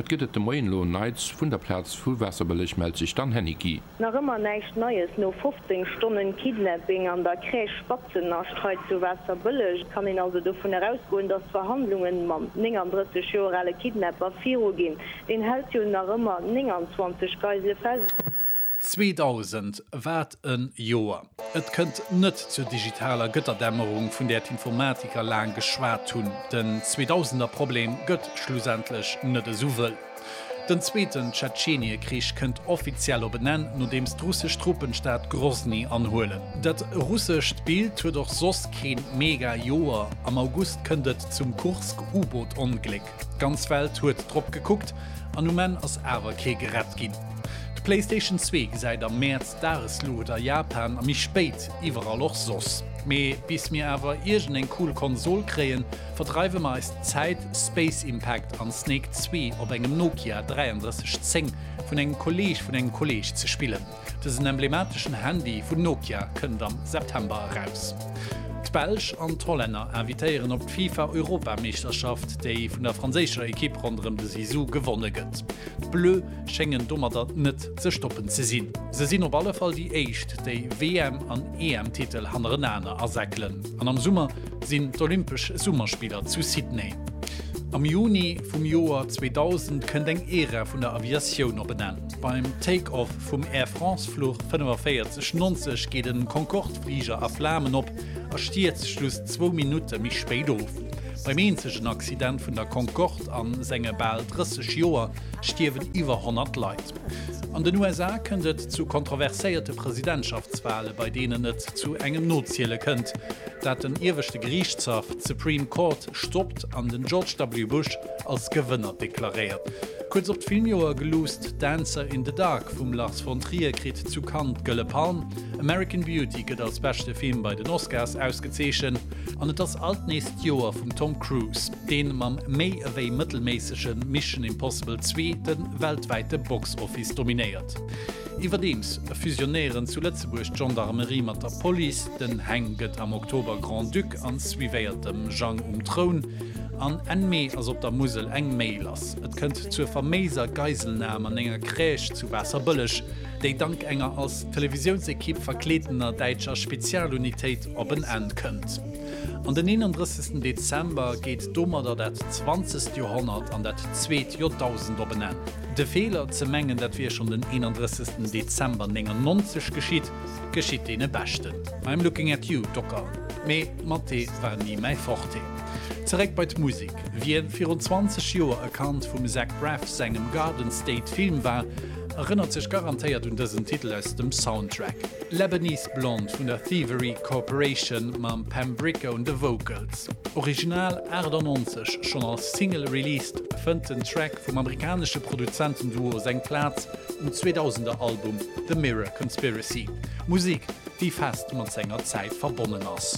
Wat gëtt et de Moien elo Neits? Vun der Plaz vu Waasserbëlleg mellt sech d'Anne Heniqui. Nach ëmmer näischt Neies no 15 Stonnen Kidnapping an der Crèche Spatzenascht hei zu Waasserbëlleg. Et kann een also dovun erausgoen, dass d'Verhandlungen mam 39 Joer ale Kidnapper viruginn. Deen hält jo nach ëmmer 29 Geisele fest. 2000 wat en Joer! Et kënnt net zur digitaler Gëtterdämmerung vun där d'Informatiker laang geschwat hunn. Den Zweedausender Problem gëtt schlussendlech net esou wëll. Den zweeten Tschetscheniekrich kënnt offiziell op en Enn, nodeems d'russesch Truppen d'Stad Grosny anhuelen. Dat russescht Bild huet och soss kee mega Joer, Am August kënnt et zum Kursk-U-Boot-Ongléck. D'ganz Welt huet drop gekuckt an um Enn ass awer kee gerett ginn. D'Playstation zwee gesäit am Mäerz d'Dagesluucht a Japan a méi spéit iwwerall och soss. Mee bis mir awer iergend eng cool Konsol kréien, verdreiwe mer eis Zäit Space Impact an Snake zwee op engem Nokia 3310 vun engem Kolleeg vun engem Kolleeg ze spillen. Dësen emblemateschen Handy vun Nokia kënnt am September eraus. D'Belsch an d'Hollänner invitéieren op d'FIFA-Europameeschterschaft, déi vun der franséischer Ekipp ronderëm de Zizou gewonne gëtt. D'Bleu schéngen domatter net ze stoppen ze sinn. Se sinn op alle Fall déi éischt, déi WM an EM-Titel hannerenaner asäckelen. An am Summer sinn d'Olympesch Summerspiller zu Sydney. Am Juni vum Joer 2000 kënnt eng Ära vun der Aviatioun op en Enn. Beim Take-off vum Air France Fluch 45 90 geet en Concorde Fliger a Flamen op a stierzt just zwou Minutte méi spéit of. Beim eenzegen Accident vun der Concorde a senge bal 30 Joer stierwen iwwer 100 Leit. An den USA kënnt et zu kontroverséierte Presidentschaftswale bei deenen et zu engem Noziele kënnt, dat den ieweschte Geriichtshaff, d'Supreme Court, stoppt an den George W. Bush als Gewënner deklaréiert. Kuerz op d'Filmjoer geluusst, Dancer in the Dark vum Lars von Trier kritt zu Cannes d'Gëlle Palm, American Beauty gëtt als beschte Film bei den Oscars ausgezeechent, an et ass alt nees d'Joer vum Tom Cruise, dee mam méi ewéi mëttelméissege Mission Impossible 2 de weltwäite Box Office dominéiert. Iwwerdeems fusionéieren zu Lëtzebuerg d'Gendarmerie mat der Police. Den Heng gëtt am Oktober Grand-Duc an suivéiert dem Jang um Troun. An Enn Mee ass op der Musel eng Méi lass. Et kënnt zur faméiser Geiselnam an enger Crèche zu Waasserbëlleg, déi dank enger als Televisiounsekipp verkleedener däitscher Spezialunitéit op en Enn kënnt. An den 31. Dezember geet domadder dat zwanzegt Joerhonnert an dat zweet Joerdausend op en Enn. De Feeler, ze mengen dat wier schonn den 31. Dezember 99 geschitt, geschitt deene Beschten. I'm looking at you, Docker, mee Mathé war ni mäi Forte. Zeréck bei d'Musek, Wien virun 20 Joer e Kand vum Zach Braff sengem Garden State Film war, erënnert sech garantéiert un dësen Titel aus dem Soundtrack. Lebanese Blonde vun der Thievery Corporation mam Pam Bricca un de Vocals, original 98 schonn als Single released, fënnt den Track vum amerikanesche Produzentenduo seng Plaz um 2000er Album The Mirror Conspiracy, Musek, déi fest mat senger Zäit verbonnen ass.